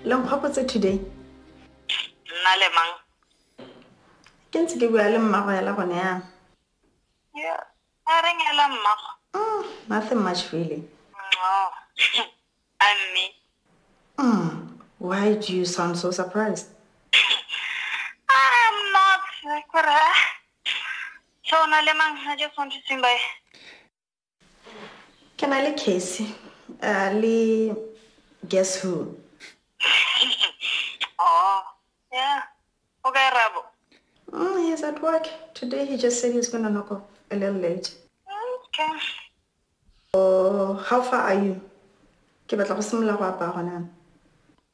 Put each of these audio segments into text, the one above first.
le nkgwapotse today nna le mang ke ntse ke bua le mmago yala gone yang Yeah. a re nyala mmago mm, nothing much really oh. a mme mm, why do you sound so surprised i'm not kore so na le mang i just want to swing by Ke na le case uh, le guess who oh yeah o kae rabo mm, he's at work today he just said he's gonna knock off a little late okay oh how far are you ke batla go simolola go apaya gone yana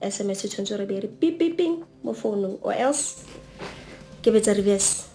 sms e tshwanetse re be re pipiping mo founong or else ke betsa reverse